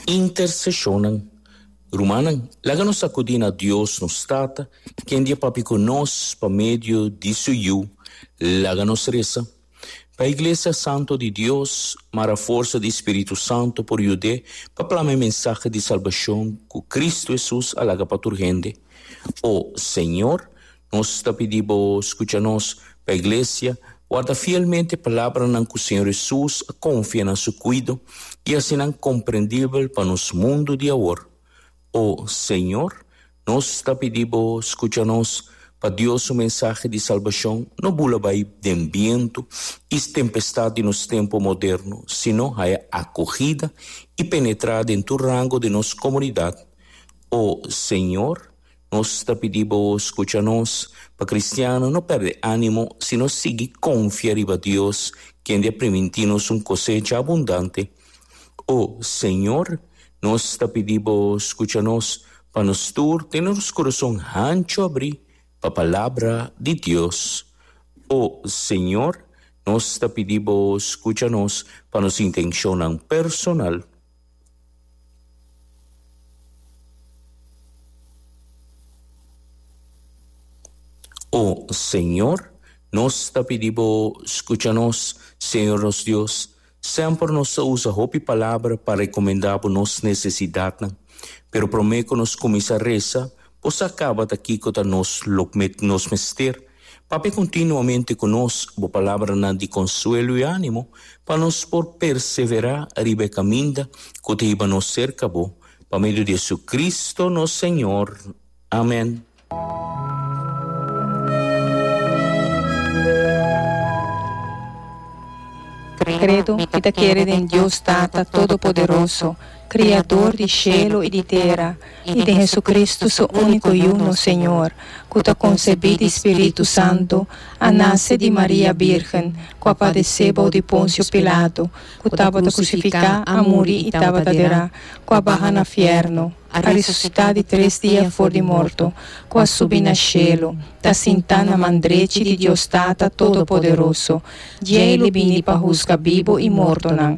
Intercesionnan. Rumannan, laga nos sacudi na Dios, nos Tata, ken di e papia cu nos pa medio di su Yu. Laga nos reza. Pa e Iglesia santo di Dios, mara forsa di e Spiritu Santo por yud'e pa plama e mensahe di salbacion cu Cristo Jesus a laga pa tur hende. O Señor, Nos ta pidi bo skucha nos, pa iglesia warda fielmente palabranan ku Señor Hesus a konfia na su kuido i hasi nan komprendibel pa nos mundu di awor. O Señor, nos ta pidi bo skucha nos, pa Dios su mensahe di salbashon no bula bai den bientu i tempestat di nos tempu moderno, sino haya akohida i penetrá den tur rango di nos komunidat. O Señor. Nos ta pidi bo skucha nos, pa kristiano no pèrdè ánimo si nos sigui konfia riba Dios, kende a primintí nos un kosecha abundante. O Señor, nos ta pidi bo skucha nos, pa nos tur tene nos kurason hanchu abrí pa palabra di Dios. O Señor, nos ta pidi bo skucha nos pa nos intenshonnan personal. O Señor, nos ta pidi bo skucha nos. Señor nos Dios, semper nos ta usa hopi palabra pa rekomendá bo nos nesesidatnan. Pero promé ku nos kuminsá resa, bo sa kaba ta kiko ta nos lo nos mester. Papia continuamente cu nos bo palabranan di consuelo y animo, pa nos por persevera riba e caminda cu ta hiba nos cerca bo, pa medio di Jesucristo nos Señor. Amen. Credo, Mi ta kere den Dios Tata Todopoderoso, Kriador di shelu i di tera, i den Hesukristu su úniko Yu, nos Señor, ku ta konsebí di spiritu santu, a nase di Maria bírgen, ku a padesé bou di Ponsio Pilatu, ku tabata krusifiká, a muri i tabata derá, ku a baha na fièrnu, a resusitá di tres dia for di morto, ku a subi na shelu, ta sintá na man drechi di Dios Tata Todopoderoso. Djei lo bini pa husga bibu i mortonan.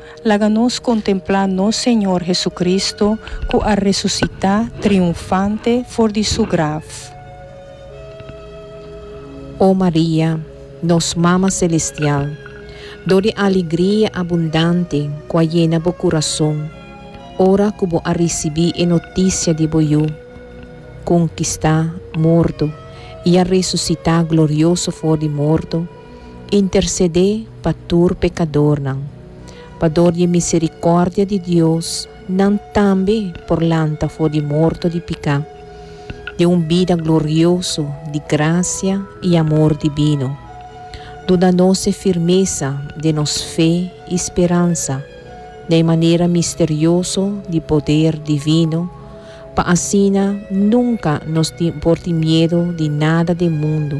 Laga nos kontemplá nos Señor Hesucristo ku a resusitá triunfante for di Su graf. O Maria, nos Mama Selestial, dor di alegria abundante ku a yena bo kurason ora ku bo a risibí e notisia di bo Yu, kun kista morto i a resusitá glorioso for di morto, intersedé pa tur pekadornan, pa dor di e miserikòrdia di Dios nan tambe por lanta for di morto di piká, den un bida glorioso di grasia i amor dibino. Duna nos e firmesa den nos fe i speransa na e manera misterioso di poder divino, pa asina nunka nos tin por tin miedu di nada den mundu,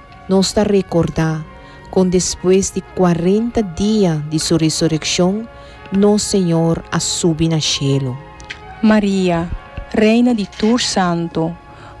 Nos ta rekordá kon despues di kuarenta dia di su resurekshon, nos Señor a subi na shelu. Maria, Reina di tur santu,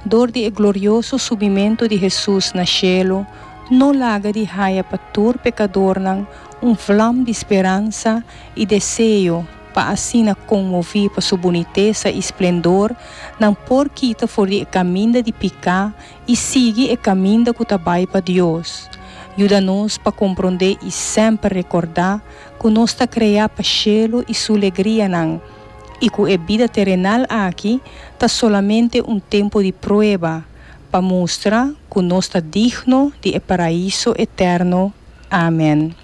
dor di e glorioso subimentu di Hesus na shelu, no laga di haya pa tur pekadornan un vlam di speransa i deseo pa asina konmoví pa su bunitesa i splendor, nan por kita for di e kaminda di piká i sigui e kaminda ku ta bai pa Dios. Yuda nos pa komprondé i semper rekordá ku nos ta kreá pa shelu i su legrianan i ku e bida terenal aki ta solamente un tempu di prueba pa mustra ku nos ta digno di e Paraíso eterno. Amen.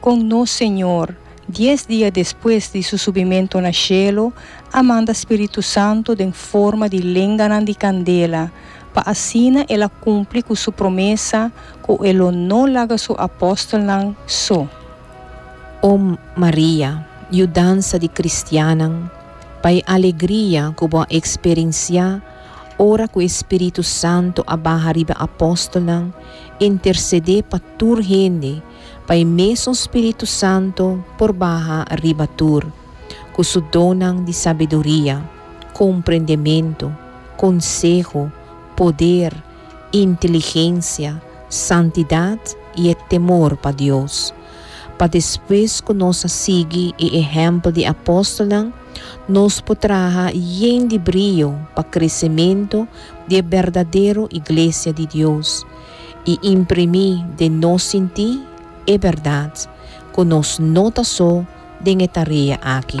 Con nos Señor, dies dia despues di su subimento na cielo, a manda Spiritu Santo den forma di lenganan di candela, pa asina el a cumpli cu su promesa cu el lo no laga su apostelnan so. O Maria, yudansa di cristiannan, pa e alegria cu bo a experencia ora cu e Spiritu Santo a baha riba e apostelnan, intercede pa tur hende, pa e mesun Spiritu Santu por baha riba tur, cu su donnan di sabiduria, comprendementu, conseho, poder, inteligencia, santidad y e temor pa Dios. Pa despues cu nos a sigui e ehempel di apostolnan, nos por traha yen di brio pa crecemento di e berdadero Iglesia di Dios, i imprimí den nos sintí e bèrdat ku nos no ta so den e tarea aki.